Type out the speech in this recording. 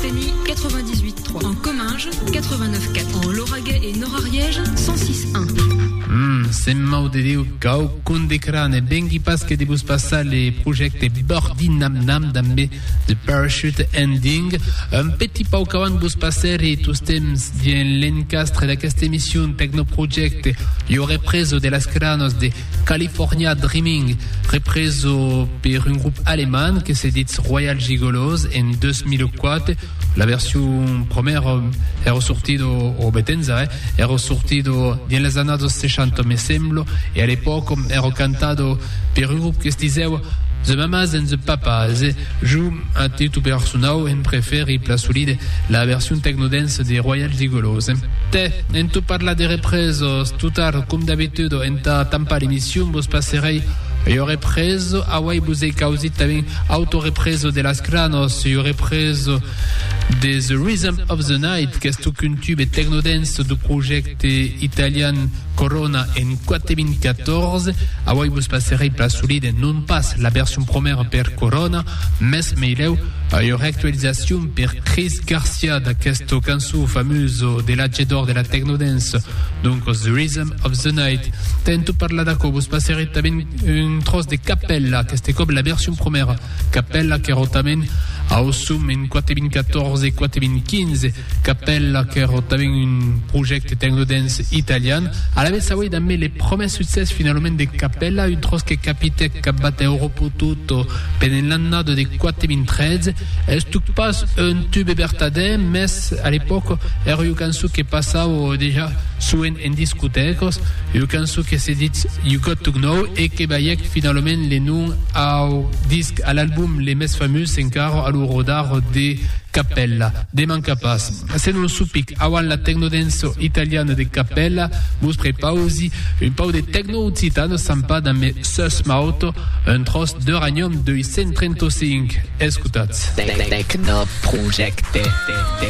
Temi 98 3. En Comminges 89 4. En Lauragais et Nord-Ariège 106 1. Hum, Sent Mau de Déu, quauqu'un de cra ne vengui pas que de vos passar le projècte Bordi Nam Nam damb The Parachute Ending. Un petit pauc avant vos passer e tostemps dien l'encastre d'aquesta emission Technoproject, lo represo de las cranos de California Dreaming, represo per un grup alemand que se ditz Royal Gigolos en 2004. La version promèra èra sortido, o betenza, eh, èra sortido dins las annadas 60, me semblo, e a l'epòca èra cantado per un grup que se disèva The Mamas and the Papas, Jo, a titu personau, en prefèri plasolide la version techno-dance de Royal Gigolos. Tè, en tot parlar de represos, tot tard, com d'abitudo, entà tampar l'emission vos passerèi ua represo, auai vos ei causit tanben Autorepreso de las Cranos, ua represo de The Rhythm of the Night, qu'es tocun tube techno-dance du projècte. Te italian Corona en 4014, auoi vos passerei pla solide non pas la version promèra per Corona, mès meilèu ua reactualizacion per Chris Garcia d'aquesta cançon famusa de l'atge d'or de la techno dance, doncas The Rhythm of the Night. Tento parlar d'aquò, vos passerei tanben un tròç de Capella, aqueste còp la version promèra, Capella qu'èra tanben au som en 4014 e 4015, Capella qu'èro tanben un projècte techno dance italian. Alavetz auei dambe le promès succès finalament de Capella, un tròç que capitèc cap batè Oropo Tutto pendent l'annada de 4013. Estuc pas un tube vertadèr, mès a l'epòca èra ua cançon que passava dejà soent en discotècas, ua cançon que se ditz You Got To Gnow e que balhèc finalament le nom au disc, a l'album le mès famós encara, a lo rodar de Capella. De manca pas. Se non supic auan la tecnodenço italiana de capèla, vos prepausi un pau de tecno-occitano sampat damb me sus mauto, un tròç d'Euranium 235. Escotatz. Tecnoprojecte.